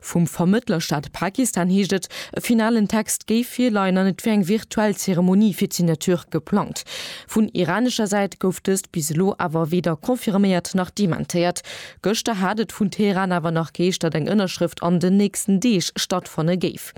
Vum Vermëttlerstaat Pakistan heescht et, e finalen Text géif virleien an et wier eng virtuell Zeremonie fir d'Signature geplangt. Vun iranescher Säit gouf dëst bis elo awer weder confirméiert nach dementéiert. Gëschter hat et vun Teheran awer nach geheescht, datt eng Ënnerschrëft an den nächsten Deeg stattfanne géif.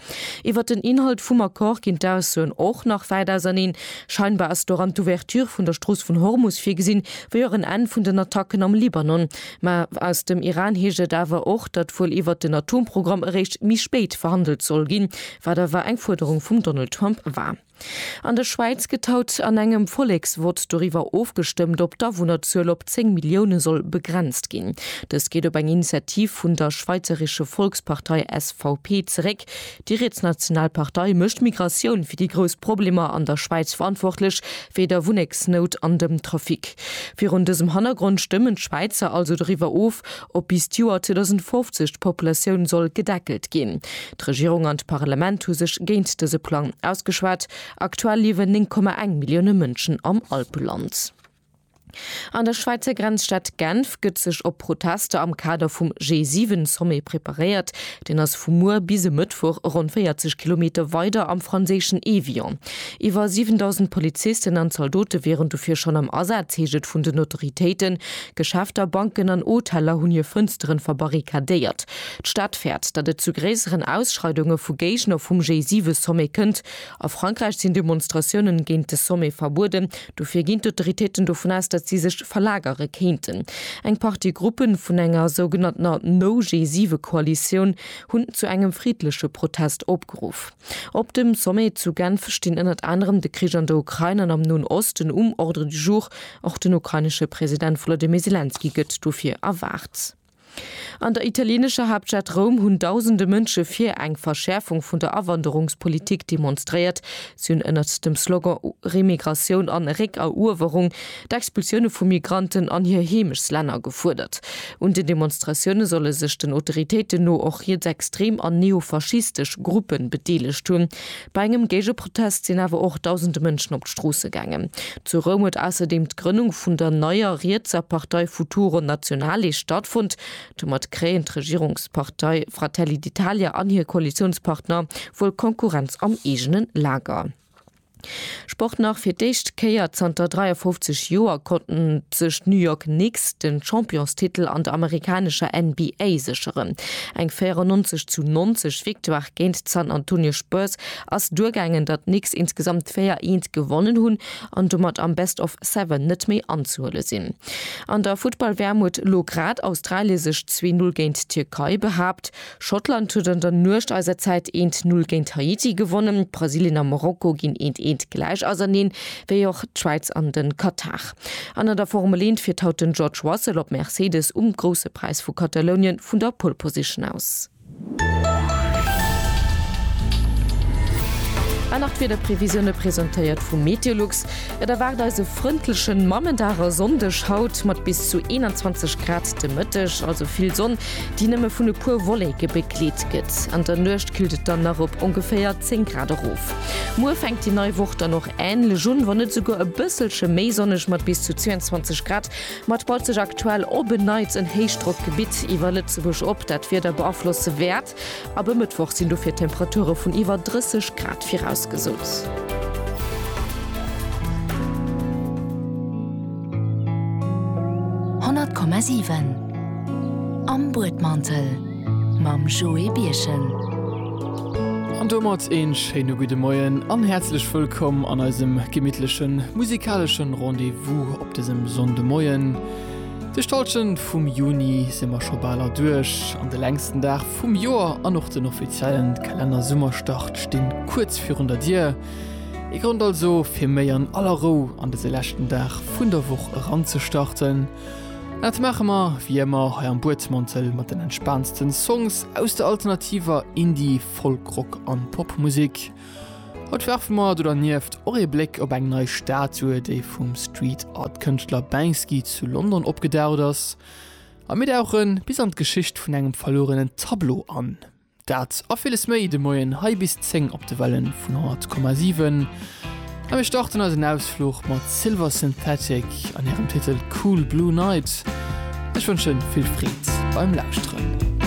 Iwwert den Inhalt vum Accord ginn d'Aussoen och nach wäit auserneen. Scheinbar ass doran d'Ouverture vun der Strooss vun Hormus virgesinn, wéi och en Enn vun den Attacken am Libanon. Mä aus dem Iran heescht et awer och, datt wuel iwwert den Atomprogramm eréischt méi spéit verhandelt soll ginn, wat awer eng Fuerderung vum Donald Trump war. An der Schwäiz gëtt haut an engem Volleksvott doriwwer ofgestëmmt, ob d'Awunnerzuel op 10 Millioune soll begrenzt ginn. Dëst geet op eng Initiativ vun der schweizeresche Volkspartei SVP zeréck. Déi rietsnational Partei mécht d'Migratioun fir déi grouss Problemer an der Schwäiz verantwortlech, wéi der Wunneksnout an dem Trafic. Virun dësem Hannergrond stëmmen d'Schwäizer also doriwwer of, ob bis d'Joer 2050 d'Populatioun soll gedeckelt ginn. D'Regierung an d'Parlament hu sech géint dëse Plang ausgeschwat. Aktuell liewen 9,1 Millioune Mënschen am Alpeland. An der Schwäizer Grenzstad Genf gëtt sech op Protester am Kader vum G7-Sommet preparéiert. Deen ass vu muer bis e Mëttwoch ronn 40 Kilometer weider am franséischen Évian. Iwwer 7.000 Polizisten an Zaldote wieren dofir schonn am Asaz, heescht et vun den Autoritéiten. Geschäfter, Banken an Hoteller hunn hir Fënstere verbarrikadéiert. D'Stad fäert, datt et zu gréisseren Ausschreidunge vu Géigner vum G7-Sommet kënnt. A Frankräich sinn Demonstratiounen géint de Sommet verbueden, Dofir ginn d'Autoritéiten dovun aus, datt si sech verlagere kéinten. Eng Partie Gruppe vun enger sougenanntener No-G7-Koalitioun hunn zu engem friddleche Protest opgeruff. Op dem Sommet zu Genf stinn ënnert anerem de Krich an der Ukrain an am Noen Osten um Ordre du jour. Och den ukrainesche President Wolodymyr Selenskyj gëtt dofir erwaart. An der italieenescher Haaptstad Roum hunn dausende Mënsche fir eng Verschäerfung vun der Awanderungspolitik demonstréiert. Si hunn ënnert dem Slogan Remigratioun an Réckeruewerung d'Expulsioune vu Migranten an hir Heemechslänner gefuerdert. Un den Demonstratioune solle sech den Autoritéiten no och rietsextrem an neofaschistesch Gruppe bedeelegt hunn. Bei engem Géigeprotest sinn awer och dausende Mënschen op d'Stroosse gaangen. Zu Roum huet ausserdeem d'Grënnung vun der neier rietser Partei Futuro Nazionale stattfonnt. Domat kréien d'Regierungspartei Fratelli d'Italia an hir Koalitiounspartner wuel Konkurrenz am eegene Lager. Sport Nach fir d'éischt Kéier zanter 53 Joer konnten sech d'New York Knicks de Championstitel an der amerikanescher NBA sécheren. Eng 94 zu 90 Victoire géint d'San Antonio Spurs ass duergaangen, datt d'Knicks insgesamt 4 Eent gewonnen hunn an domat am Best of Seven net méi anzehuele sinn. An der Futtball-WM huet elo grad Australie sech 2-Null géint d'Tierkei behaapt. Schottland huet an der Nuecht eiser Zäit eent Null géint Haiti gewonnen. Brasilien a Marokko ginn eent eent gläich auserneen, wéi och d'Schwäiz an den Katar. An an der Formel eent fiert haut den George Russell op Mercedes um Grousse Präis vu Katalounien vun der Pole Position aus. An nach d'Wiederprevisioune presentéiert vu Meteolux. Et erwaart eis e frëndlechen Mammendag a sonndeg haut mat bis zu 21 Grad de Mëtteg, also vill Sonn. déi nëmme vun e puer Wolleke begleet gëtt. An der Nuecht killt et dann nach op ongeféier 10 Grad erof. Muer fänkt déi nei Woch dann och änlech un, wann net esouguer e bësselche méi sonneg mat bis zu 22 Grad. Ma et baut sech aktuell op en Neits en Héichdrockgebitt iwwer Lëtzebuerg op, dat d'Wieder beaflosse wäert. Ab e Mëttwoch sinn dofir Temperature vun iwwer 30 Grad virausgesot. Honnert Komma siwen Am Buedmantel mam Joé Birchen. An domat een schéine gudde Moien an häerzlech wëllkomm an eisem gemittlechen musikaleschen Rendez-vous op desem Sonndemoien. Duerch d'Hallschent vum Juni si mer scho bal erduerch an de längsten Dag vum Joer an och den offiziellen Kalenner-Summerstart sti kuerz virun der Dier. Ee Grond also, fir méi an aller Rou an dëse leschten Dag vun der Woch eranzestarten. An dat maache mer wéi ëmmer hei am Buedmantel mat den entspaansten Songs aus der alternativer Indie-, Folk-, Rock an Popmusek. Haut werfe mer do dernieft och ee Bléck op eng nei Statue, déi vum Street Art Kënschtler Banksy zu London opgedaucht ass. A mir dauche bis an d'Geschicht vun engem verluerenen Tableau an. Dat a villes méi de Moien hei bis 10 op de Wellen vun 100,7. A mir starten eisen Ausfluch mat Silver Synthetic an hirem Titel Cool Blue Night. Ech wënschen vill Freed beim Lauschteren.